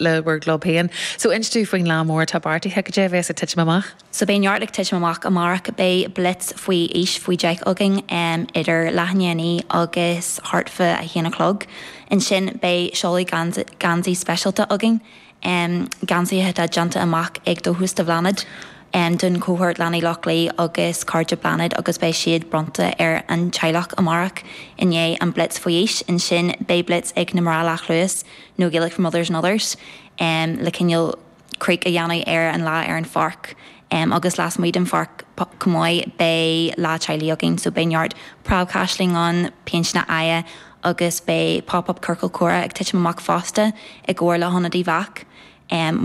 le bhur gclub féin. So inis dúinn faoin lá mór atá beartaithe, cad é a bhéas ag titim amach? So beidh neart ag titim amach amárach. Beidh blitz faoi aois faoi 10 againn idir leath i ndiaidh a naoi agus thart fá a haon a chlog. Ansin beidh seoladh geansaí speisialta againn, geansaithe atá déanta amach ag Dóchas do Bhláthnaid don chohórt Leanaí Loch Lao agus Cairde Bláthnaid agus beidh siad bronnta ar an teaghlach amárach i ndiaidh an blitz faoi aois. Ansin beidh blitz ag na mná leathluas. nó Gaelic for Mothers and Others, le cineál craic a dhéanamh ar an lá ar an pháirc agus lasmuigh den pháirc chomh maith beidh lá teaghlaigh againn so beidh neart preabchaisleáin ann, péinteáil aghaidhe agus beidh pop up ciorcal comhrá ag titim amach fosta i gcomhar le hIonad Uíbh Eachach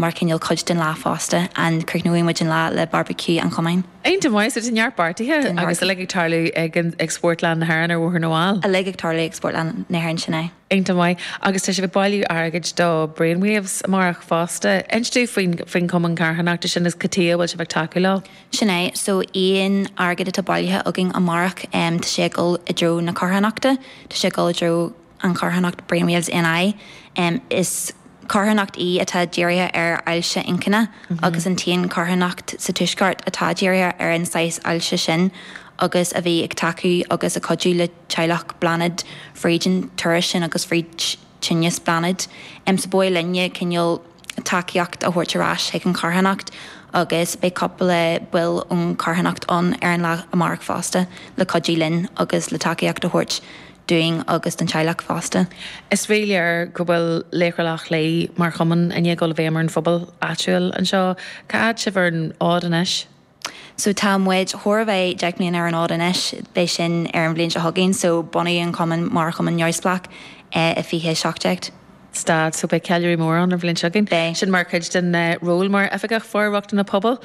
mar cineál cuid den lá fosta and críochnóidh muid an lá le barbecue an chumainn. Iontach maith, so tá neart beartaithe agus uilig ag tarlú ag Spórtlann na hÉireann ar Bhóthar na bhFál. Uilig ag tarlú ag Spórtlann na hÉireann, sin é. Iontach maith. Agus tá sibh ag bailiú airgid do Brainwaves amárach fosta. Inis dúinn faoin chumann carthanachta sin agus cad tuighe a bhfuil sibh ag tacú leo. Sin é. So aon airgead atá bailithe againn amárach em tá sé ag dul i dtreo na carthanachta. Tá sé ag dul i dtreo an charthanacht Brainwaves NI. Em is carthanacht í atá dírithe ar ailse inchinne agus an t-aon charthanacht sa tuaisceart atá dírithe ar an saghas ailse sin agus a bhí ag tacú agus ag cuidiú le teaghlach Bláthnaid, fríd an turas sin agus fríd tinneas Bláthnaid, em so ba mhaith linne cineál tacaíocht a thabhairt ar ais chuig an charthanacht agus beidh cupla baill ón charthanacht ann ar an lá amárach fosta le cuidiú linn agus le tacaíocht a thabhairt dúinn agus don teaghlach fosta. Is rí-léir go bhfuil Laochra Loch Lao mar chumann i ndiaidh dul i bhfeidhm ar an phobal áitiúil anseo. Cá fhad sibh ar an fhód anois? So tá muid chóir a bheith deich mbliana ar an fhód anois, beidh sin ar an bhliain seo chugainn, so bunaíodh an cumann mar chumann neamhspleách i fiche seacht déag. Stad, so beidh ceiliúradh mór ann an bhliain seo chugainn. Beidh. Sin mar chuid den ról mar Oifigeach For-rochtana Pobail,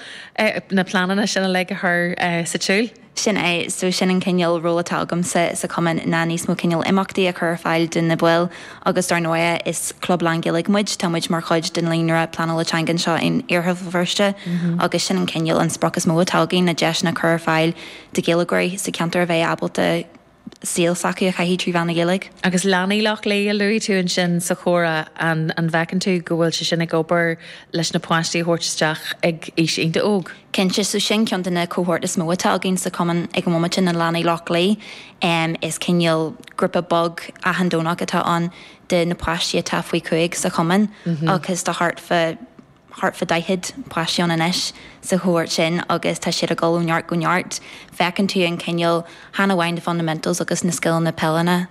na pleananna sin uilig a chur sa tsiúl? Sin é, so sin an cineál ról atá agamsa sa chumann ná níos mó cineál imeachtaí a chur ar fáil do na baill Agus dar ndóigh, is club lánGhaeilge muid, tá muid mar chuid den líonra pleanála teanga anseo in Iarthar Bhéal Feirste agus sin an cineál, an sprioc is mó atá againn, na deiseanna a chur ar fáil do Ghaeilgeoirí sa cheantar a bheith ábalta saol s'acu a chaitheamh trí mheán na Gaeilge. Agus Leanaí Loch Lao, a luaigh tú ansin sa chomhrá, an bhfeiceann tú go bhfuil sé sin ag obair leis na páistí a thabhairt isteach ag aois iontach óg? Cinnte, is í sin ceann de na cohóirt is mó atá againn sa chumann ag an bhomaite, na Leanaí Loch Lao. Is cineál grúpa beag athandeonach atá ann de na páistí atá faoi chúig sa chumann agus tá thart fá thart fá daichead páistí ann anois sa chohóirt sin agus tá siad ag dul ó neart go neart. Feiceann tú an cineál, chan amháin na fundamentals agus na scileanna peileanna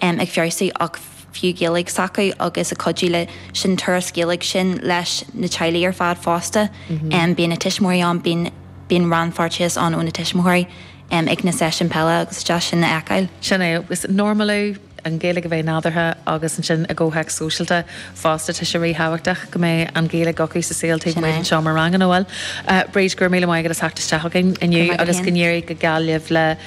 ag feabhsú ach. fiú Gaeilge s'acu agus a chuidiú le an turas Gaeilge sin leis na teaghlaigh ar fad fosta. Bíonn na tuismitheoirí ann, bíonn, bíonn rannpháirteachas ann ó na tuismitheoirí ag na seisiúin peile agus is deas sin a fheiceáil. Sin é, agus normalú, an Ghaeilge a bheith nádúrtha agus ansin i gcomhthéacs sóisialta fosta tá sé ríthábhachtach go mbeidh an Ghaeilge acu sa saol taobh amuigh den seomra ranga nó bhuel. Bríd, go raibh míle maith agat as theacht isteach againn inniu agus go n-éirí go geal libh le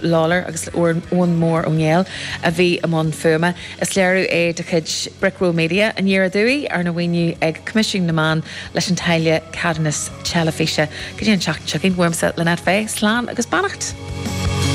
Lawlor agus le Eoin Mór Ó Néill a bhí i mbun fuaime. Is léiriú é de chuid Brickroll Media, Aniar Aduaidh, arna mhaoiniú ag Coimisiún na Meán leis an táille ceadúnas teilifíse. Go dtí an tseachtain seo chugainn, uaimse, Lynette Fay, slán agus beannacht.